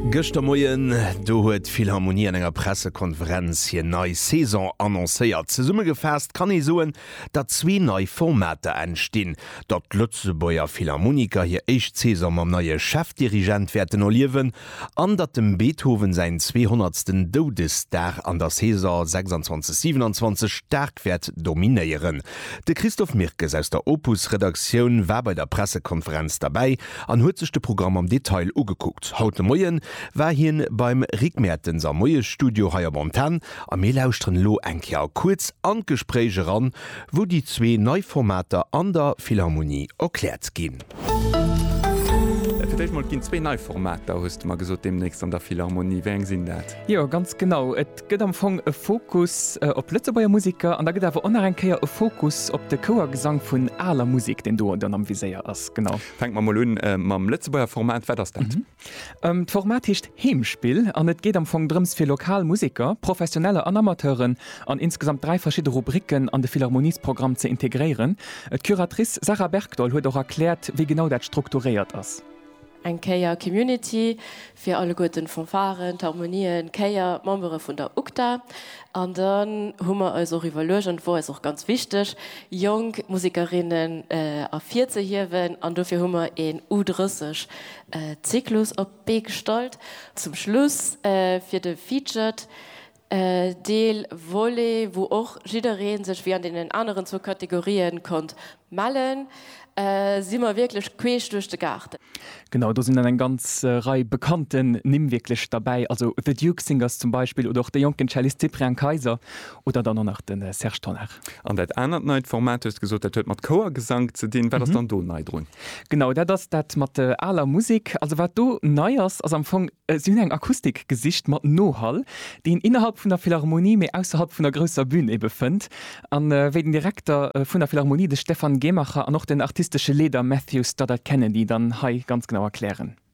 Gëschter Moien, do huet d'Philharmonie an enger Pressekonferenz hir nei Saison annoncéiert. Zesummegefaasst kann ee soen, datt zwee nei Formater entstinn, datt d'Lëtzebuerger Philharmoniker hir éischt Saison mam neie Chefdirigent wäerten erliewen an datt dem Beethoven säin 200. Doudesdag an der Saison 26/27 staark wäert dominéieren. De Christophe Mirkes aus der Opus-Redaktioun war bei der Pressekonferenz derbäi. an huet sech de Programm am Detail ugekuckt. Haut de Moien war hien beim Rick Mertens am Moiesstudio hei op Antenn a mir lauschteren elo eng Kéier kuerz an d'Gespréich eran, wou déi zwee nei Formater an der Philharmonie erkläert ginn. Fir d'éischt mol, et ginn zwee nei Formater, hues de mer gesot, deemnächst an der Philharmonie. Wéi eng sinn dat? Jo, ganz genau. gëtt am Fong e Fokus op d'Lëtzebuerger Museker an da gëtt awer och nach eng Kéier e Fokus op de Chouergesang vun aler Musek, deen do dann am Viséier ass. Genau. Fänke mer mol un mam Lëtzebuerger Format. Wat ass dat? D'Format heescht Heemspill an et geet am Fong drëms, fir lokal Museker, Professioneller an Amateuren an insgesamt dräi verschidde Rubricken an de Philharmoniesprogramm ze integréieren. D'Curatrice Sarah Bergdoll huet och erkläert, wéi genau dat strukturéiert ass. Eng Kéier Community, fir alleguerten d'Fanfaren, d'Harmonien, d'Chéier, d'Membere vun der UGDA. An dann hu mer eis och iwwerluecht, an et wor eis och ganz wichteg, jonk Musikerinnen ervirzehiewen, an dofir hu mer een U30 Zyklus op d'Bee gestallt. Zum Schluss, fir de Featured, Deel Volet, wou och jiddereen sech wéi an deenen aneren zwou Kategorien konnt mellen, si mer wierklech queesch duerch de Gaarten. Genau, do sinn dann eng ganz Rei bekannten Nimm wierklech derbäi, also The Duke Singers zum Beispill oder och de jonken Cellist Cyprien Keiser oder dann och nach de Serge Tonnar. An dat anert neit Format, hues de gesot, dat huet mat Chouergesank ze dinn. Wat ass dann do nei drun? Genau, dat ass dat mat aler Musek. Also wat do nei ass, ass am Fong, si hunn eng Akustik gesicht mat Nohall, déi een innerhalb vun der Philharmonie, mee ausserhalb vun der grousser Bün ebe fënnt. A wéi den Direkter vun der Philharmonie, de Stefan Gehmacher, an och den artistesche Leeder Matthew Stoddart-Kennedy dann hei ganz genau erklären.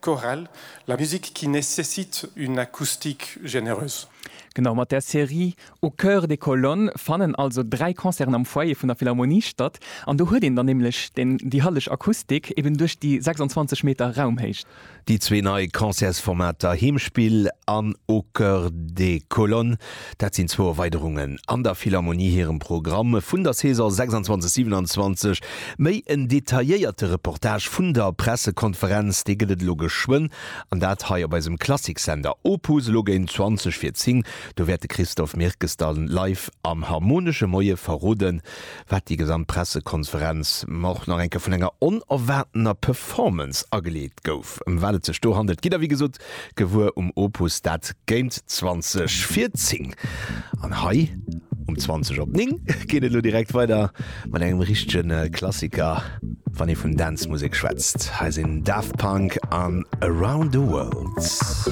Chorale, La musique qui nécessite une acoustique généreuse. Genau, mat der Serie Au cœur des colonnes fannen also dräi Concerten am Foyer vun der Philharmonie statt. An do huet een dann nämlech den, déi hallech Akustik, eben duerch déi 26 Meter Raumhéicht. Déi zwee nei Concertsformater Heemspill an Au cœur des colonnes Dat sinn zwou Erweiderungen an der Philharmonie hirem Programm vun der Saison 26, 27. Méi en detailléierte Reportage vun der Pressekonferenz, dee gëtt et elo geschwënn, an dat hei op eisem Klassiksender Opus elo géint 20 vir 10. Do wäert de Christophe Mirkes dann live am Harmonesche Moie verroden, wat déi gesamt Pressekonferenz ma och nach eng Kéier vun enger onerwaartener Performance ageleet gouf. Ëm wat et sech do handelt, gitt der wéi gesot Gewuer um Opus dat géint 20 vir 10. An hei um 20 op 9 geet et lo direkt weider mat engem richtege Klassiker, wann ee vun Dance-Musek schwätzt. Hei sinn Daft Punk an Around the World.